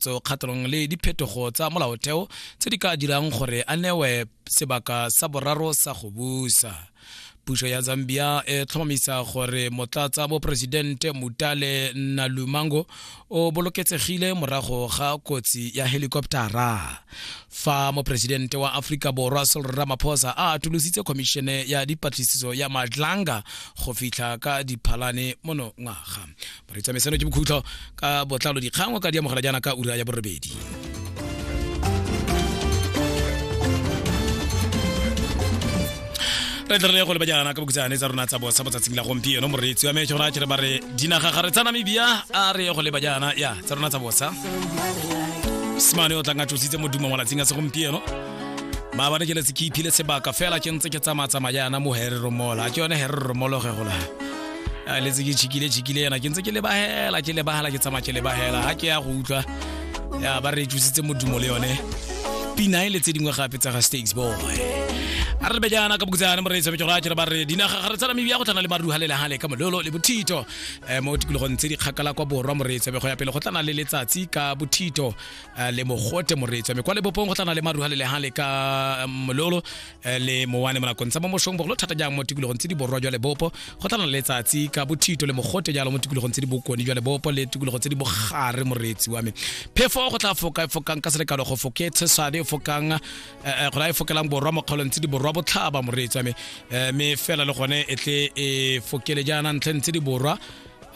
tso kgatlhanong le diphetogo tsa molaotheo tse di ka dirang gore a newe sebaka sa boraro sa go busa puso ya zambia e tlhomamisa gore motlatsa boporesidente mutale nalumango o boloketsegile morago ga kotsi ya helikoptara fa moporesidente wa aforika borwa sol ramaphosa a atolositse khomišene ya dipatlisiso ya madlanga go fitlha ka diphalane monongwaga re tsamaisano ke bokhutlo ka botlalo dikgang o ka di amogela jaana ka ura ya borobedi re tlere go leba jaana ka bokutsane tsa rona tsa bosa botsatsing la gompieno moreetsi wa metsho rona kere ba re dinaga ga re tsa namibia a re go leba jaana ya tsa rona tsa bosa semane o tlang a tsositse modumo malatsing a segompieno maabane ke letse ke iphile sebaka fela ke ntse ke tsamaya tsamaya jaana mo herero mola ke yone herero molo ge gola a letse ke chikile chikile yana ke ntse ke lebahela ke lebahela ke tsamaya ke lebahela ha ke ya go utlwa ya ba re tsositse modumo le yone pina e le tse dingwe gape tsa ga stakes boy a re bejana ka bokutsana mo re tsebe jora ke re ba re dinaga ga re tsala mebia go tlana le maruha le lehale ka mololo le bothito eh, mo tikologong tse di kgakala kwa borwa mo re tsebe go ya pele go tlana le letsatsi ka bothito eh, le mogote mo re tsebe kwa lebopong go tlana le maruha le lehale ka eh, mololo eh, le mowane mo nakong tsa mo mosong bogolo thata jang mo tikologong tse di borwa jwa lebopo go tla na letsatsi ka bothito le mogote jalo mo tikologong tse di bokone jwa lebopo le tikologo tse di bogare moreetsi wa me phefo go tla foka e fokang ka selekalo go foke tshesane e fokang eh, eh, go la e fokelang borwa mo kgaolong tse di borwa botlhaba moreetsi wa me mme fela le gone e tle e fokele jaana ntlheng tse di borwa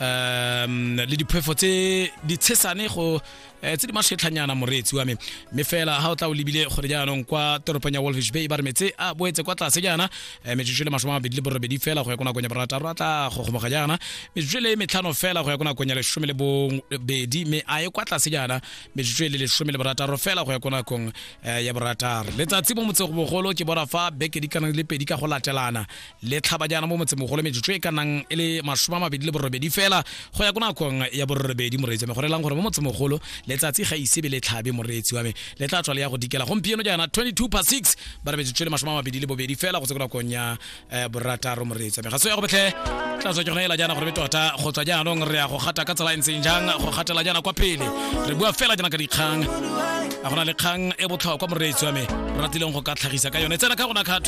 um le diphefo tse ditshesane go um tse di matlhetlhanyana moreetsi wa me mme fela ga o tla o lebile gore jaanong kwa toropong ya wolfish bay ba re metse a boetse kwa tlase jaana um metsotso le masome a mabedi le borobedi fela go ya ko nakong ya borataro a tla gogomoga jaana metsotso le metlhano fela go ya ko nakong ya lesome le bobedi mme a ye kwa tlase jaana metsotso le lesome le borataro fela go ya ko nakong ya borataro letsatsi mo motsego bogolo ke bona fa beke di kana le pedi ka go latelana le tlhaba jaana mo motsemogolo metsotso e ka nang e le masome a mabedi le borobedi fela go ya ko nakong ya borobedi moreetsi wa me go relang gore mo motsemogolo letsatsi ga isebe le tlhabe moreetsi wa me le tla tswa le ya go dikela gompieno jaana 22 pa 6 ba re metsotso e le masome a mabedi le bobedi fela go se ko nakong ya eh, borataro moreetsi wa me ga se ya go betlhe tla tswa ke gone ela jaana gore be tota go tswa jaanong re ya go gata ka tsela e ntseng jang go gatela jaana kwa pele re bua fela jaana ka dikgang a gona le kgang e botlhokwa moreetsi wa me ratileng go ka tlhagisa ka yone tsena ka gona ka